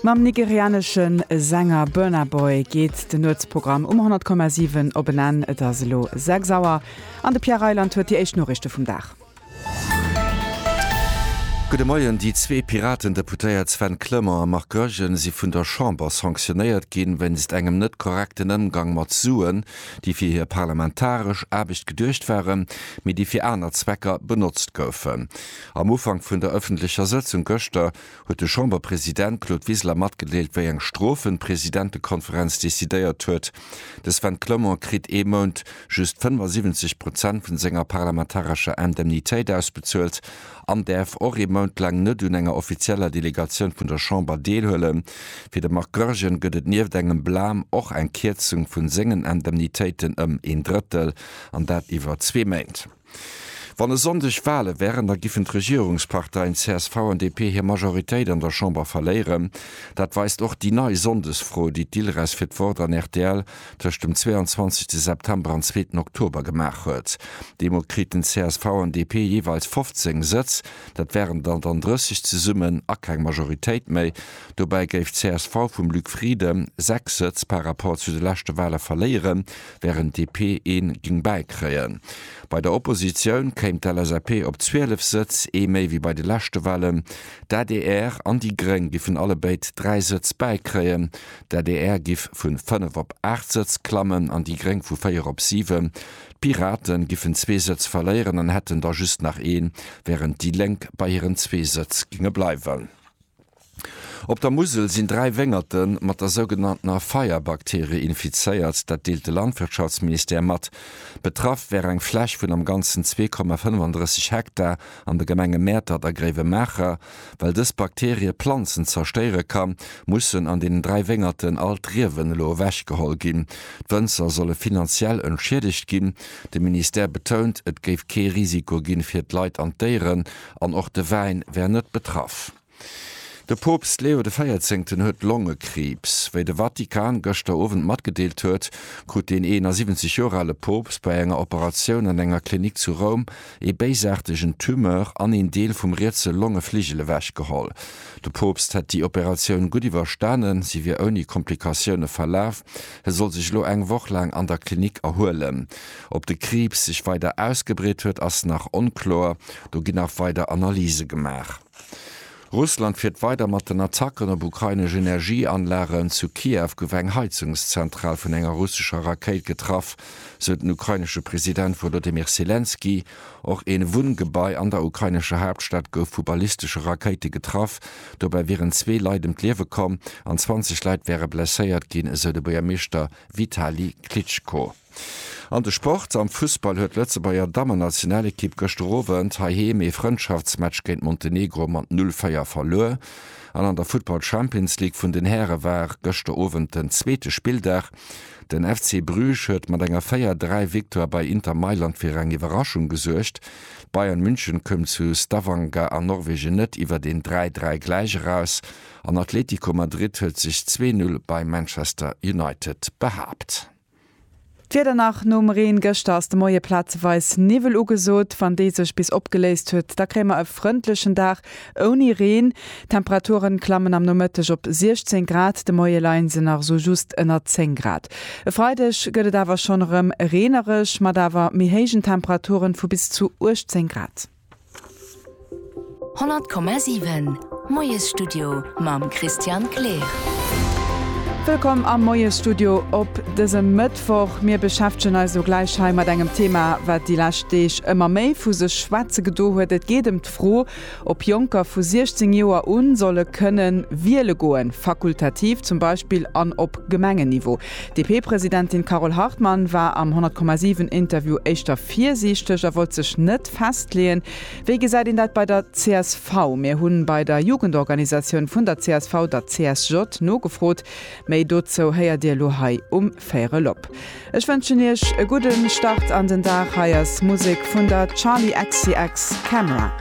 Mam nigerianesche Sänger Burna Boy geet den Nuetsprogramm um 100,7 op en Enn. Et ass elo 6 Auer an de Pierre Reyland huet déi éischt Noriichte vum Dag. Gudde Moien. Déi zwee Piraten-Deputéiert Sven Clement a Marc Goergen si vun der Chamber sanktionéiert ginn, wéinst engem net korrekten Ëmgang mat Suen, déi fir hir parlamentaresch Aarbecht geduecht waren, mee déi fir aner Zwecker benotzt goufen. Am Ufank vun der ëffentlecher Sëtzung gëschter huet de Chamberpresident Claude Wiseler matgedeelt, wéi eng Strofen d'Presidentekonferenz decidéiert huet. De Sven Clement kritt ee Mount just 75 Prozent vun senger parlamentarescher Indemnitéit ausbezuelt an däerf och ee Mount laang net un enger offizieller Delegatioun vun der Chamber deelhuelen. Fir de Marc Goergen gëtt et nieft engem Blam och eng Kierzung vun sengen Indemnitéiten ëm een Drëttel, an dat iwwer zwee Méint. Wann e Sonndeg Wale wären, da giffen d'Regierungsparteien csv an DP hir Majoritéit an der Chamber verléieren. Dat weist och déi nei Sonndesfro, déi d'ILRES fir d'Wort an rtl tëscht dem 22 September an zweeten Oktober gemaach huet. Deemol kriten csv an DP jeeweils 15 Sëtz, dat wären der dann 30 zesummen a keng Majoritéit méi. Dobäi géif csv vum Luc Frieden sechs Sëtz par Rapport zu de leschte Wale verléieren. wärend d'DP ee géing bäikréien. Bei der Oppositioun kéim d'LSAP op 12 Sëtz, ee méi wéi bei de leschte Wahlen. D'adr an déi Gréng giffen allebéid 3 Sëtz bäikréien. D'adr giff vu 5 op 8 Sëtz klammen an déi Gréng vu 4 op 7. D'Pirate giffen zwee Sëtz verléieren an hätten da just nach een, wärend déi Lénk bei hiren zwee Sëtz géinge bleiwen. Op der Musel sinn dräi Wéngerte mat der sougenanntener Feierbakterie infizéiert, dat deelt de Landwirtschaftsministère mat. Betraff wär eng Fläch vun am Ganzen zwee Komma 35 Hektar an de Gemenge Mäertert a Gréiwemaacher. Well dës Bakterie Planzen zerstéiere kann, mussen an deenen dräi Wéngerten all d'Riewen elo ewechgeholl ginn. D'Wënzer solle finanziell entschiedegt ginn. De Ministère betount, et géif kee Risiko gi fir d'Leit an d'Déieren An och de Wäin wär net betraff. De Poopst Leo de Véierzéngten huet Longekriibs. Wéi de Vatikan gëschter Owend matgedeelt huet, krut deen 71 Joer ale Poopst bei enger Operatioun an enger Klinik zu Roum ee béisaartegen Tumeur an een Deel vum rietse Longefligel ewechgeholl. De Poopst hätt déi Operatioun gutt iwwerstanen, si wier ouni Komplikatioune verlaf. Hie soll sech elo eng Woch laang an der Klinik erhuelen. Ob de Kriibs sech weider ausgebreet huet, ass nach onkloer. Do ginn nach weider Analyse gemaach. Russland fiert weider mat den Attacken op ukrainesch Energieanlagen. Zu Kiew gouf eng Heizungszentral vun enger russescher Rakéit getraff, sou den ukrainesche President Wolodymyr Selenskyj. Och ee Wunngebai an der ukrainescher Haaptstad gouf vu ballistesche Rakéite getraff. Dobäi wieren zwee Leit ëm d'Liewe komm an 20 Leit wäre blesséiert ginn, esou de Buergermeeschter Vitali Klitschko. An de Sport, Am Fussball huet d'Lëtzebuerger Dammennationalekipp gëschter Owend heiheem ee Frëndschaftsmatch géint Montenegro mat 0, 4 verluer. An an der Futtball Champions League vun den Häre war gëschter Owend den zweete Spilldag. Den FC Bruges huet mat enger 4, 3 Victoire bei Inter Mailand fir eng Iwwerraschung gesuergt. Bayern München koum zu Stavanger an Norwegen net iwwer een 3, 3 Gläich eraus. An Atletico Madrid huet sech 2, 0 bei Manchester United behaapt. D'Wieder nach nom Reen gëschter, ass de Moie plazeweis Niwwel ugesot. Wann dee sech bis opgeléist huet, da kréie mer e frëndlechen Dag ouni Reen. D'Temperature klammen am Nomëtteg op 16 Grad, de Moie leie se nach esou just ënner 10 Grad. E Freideg gëtt et awer schonn erëm reenereg, mat awer méi héijen Temperature vu bis zu 18 Grad. 100,7 Moiesstudio mam Christian Kleer. Wëllkomm am Moiesstudio op dësem Mëttwoch. Mir beschäftegen eis elo gläich hei mat engem Thema, wat déi lescht Deeg ëmmer méi vu sech schwätze gedo huet. Et geet ëm d'Fro, ob Jonker vu 16 Joer un solle kënnen wiele goen, fakultativ zum Beispill, an op Gemengenniveau. D'DP-Presidentin Carole Hartmann war am 100,7 Interview éischter virsiichteg a wollt sech net Lëscht festleeën. Wéi gesäit een dat bei der csv? Mir hunn bei der Jugendorganisatioun vun der csv, der CSJ, nogefrot. Méi dozou héiert Dir elo hei um Véierel op. Ech wënschen Iech e gudde Start an den Dag. Hei ass Musek vun der Charli XCX, Camera.